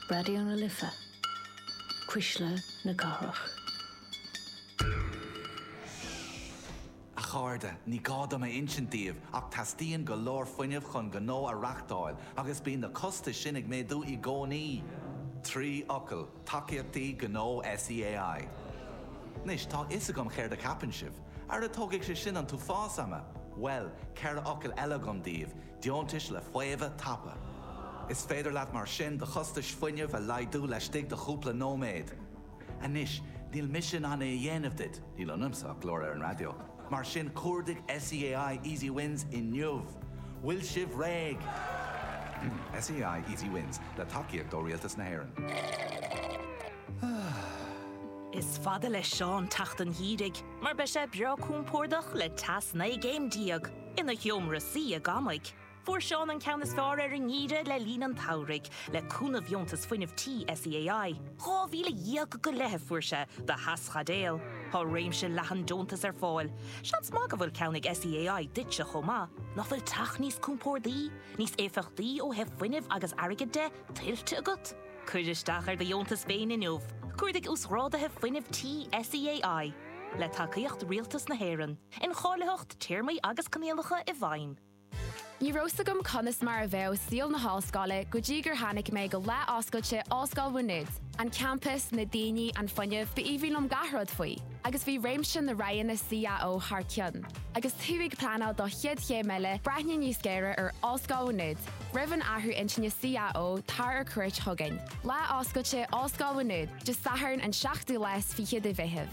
Raidió na Life, Cuisle na Cathrach. A chairde, ní gá dom a insint daoibh ach teastaíonn go leor fuinnimh chun gnó a reachtáil agus bíonn na costais sin ag méadú i gcónaí! Trí fhocal, Tacaíochtaí Gnó SEAI. Anois, tá a fhios agam céard a cheapann sibh. Ara tógfaidh sé sin an t-uafás ama! Bhuel, ceithre fhocal eile agam daoibh, deontais le faomhadh tapa. Is féidir leat mar sin do chostais fuinnimh a laghdú laistigh de chúpla nóiméad. Anois, níl mise in ann é a dhéanamh duit, níl ionamsa ach glór ar an raidió, mar sin cuardaigh SEAI Easy Wins inniu. Bhfuil sibh réidh? SEAI Easy Wins, le tacaíocht ó Rialtas na hÉireann. Is fada le Seán teacht an gheimhridh mar beidh sé breá compordach le teas 19 gcéim. Ina sheomra suí i gCamaigh, fuair Seán an ceann is fearr ar an ngeimhreadh le linn an tsamhraidh, le cúnamh dheontas fuinnimh tí SEAI. Dhá mhíle dhéag go leith a fuair sé do theaschaidéal. Tá réimse leathan deontas ar fáil. Seans maith go bhfuil ceann ag SEAI duitse chomh maith. Nach bhfuil teach níos compordaí, níos éifeachtaí ó thaobh fuinnimh agus airgid de, tuillte agat? Cuir isteach ar do dheontas féin inniu, cuardaigh Uasghrádaithe Fuinnimh Tí SEAI, le tacaíocht Rialtas na hÉireann. incháilitheacht téarmaí agus coinníollacha i bhfeidhm. Ní raibh a fhios agam conas mar a bheadh saol na hollscoile go dtí gur tháinig mé go Lá Oscailte Ollscoil Mhá Nuad. An campas, na daoine, an fuinneamh, ba aoibhinn liom gach rud faoi. Agus bhí réimse na roghanna CAO thar cionn. Agus tú ag pleanáil do chéad chéim eile, breathnaigh níos géire ar Ollscoil Mhá Nuad. Roimh an athrú intinne CAO, tar ar cuairt chugainn. Lá Oscailte Ollscoil Mhá Nuad, Dé Sathairn an 7ú lá 's fiche de Mheitheamh.